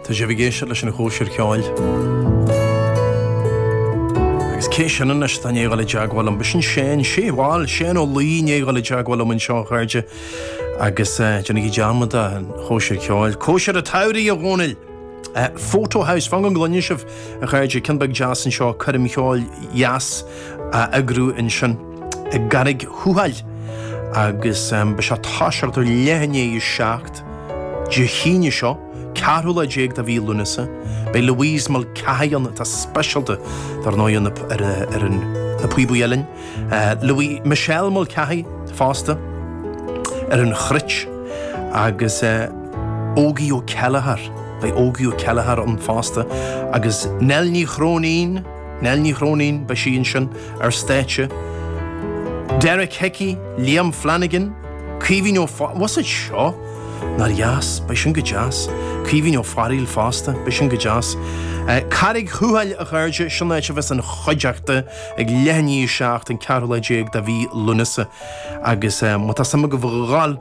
Tá sibh ag éisteacht leis an chóisir cheoil. Agus cé sin anois atá i ndiaidh a ghabháil i dteagmháil liom? B'shin Séan, bhuel, Séan Ó Laoi, i ndiaidh a ghabháil i dteagmháil liom anseo a chairde. Agus déanaigí dearmad den chóisir cheoil. Cóisir an tsamhraidh, a Dhónaill! Fota House, fan go gcluine sibh a chairde, ceann beag deas anseo, coirm cheoil dheas á eagrú ansin i gCarraig Thuathail. Agus beidh sé ag toiseacht ar leath i ndiaidh a seacht. Dé hAoine seo, 14 lá de mhí Lúnasa, beidh Louise Mulcahy ann, atá speisialta dar ndóigh ar na píobaí uilleann, Louis, Michelle Mulcahy fosta, ar an chruit agus Ógie Ó Céilleachair, beidh Ógie Ó Céilleachair ann fosta agus Nell Ní Chróinín, Nell Ní Chróinín, beidh sí ansin ar stáitse, Derek Hickey, Liam Flanagan, Caoimhín Ó Fear, bhfuil a fhios agat seo? Nár dheas, beidh sin go deas. Caoimhín Ó Fearghail fosta, beidh sin go deas. Carraig Thuathail a chairde, sin an áit a bheas an chuideachta ag leath i ndiaidh a 7, an ceathrú lá déag de mhí Lúnasa agus má tá suim agaibh a ghabháil,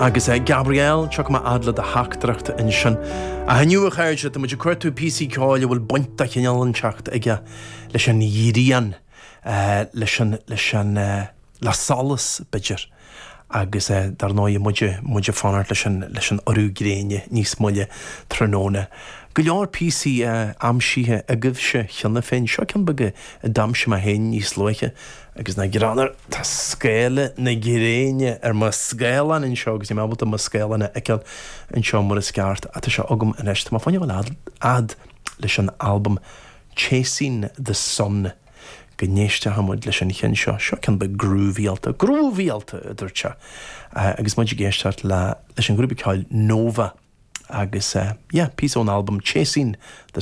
Agus a Gabriel, tiocfaidh mé a fhad le do theachtaireacht ansin. Ach inniu a chairde, tá muid ag cuartú píosaí ceoil a bhfuil baint de chineál inteacht aige leis an ghrian, leis an, leis an, le solas b'fhéidir agus dar ndóigh muid, muid ag fanacht leis an, leis an urú gréine níos moille tráthnóna. Go leor píosaí aimsithe agaibhse cheana féin, seo ceann beag a d'aimsigh mé féin níos luaithe, Agus nach greannmhar, tá scáile na gréine ar mo scáileán anseo agus níl mé ábalta mo scáileán a fheiceáil anseo mar is ceart, ah tá sé agam anois, tá mé ag fanacht le gabháil a fhad leis an albam Chasing the Sun go n-éisteochaidh muid leis an cheann seo, seo ceann beag grúvaíálta, grúvaíálta! a dúirt sé agus muid ag éisteacht leis an ghrúpa ceoil Nova agus yeah, píosa ón albam Chasing the.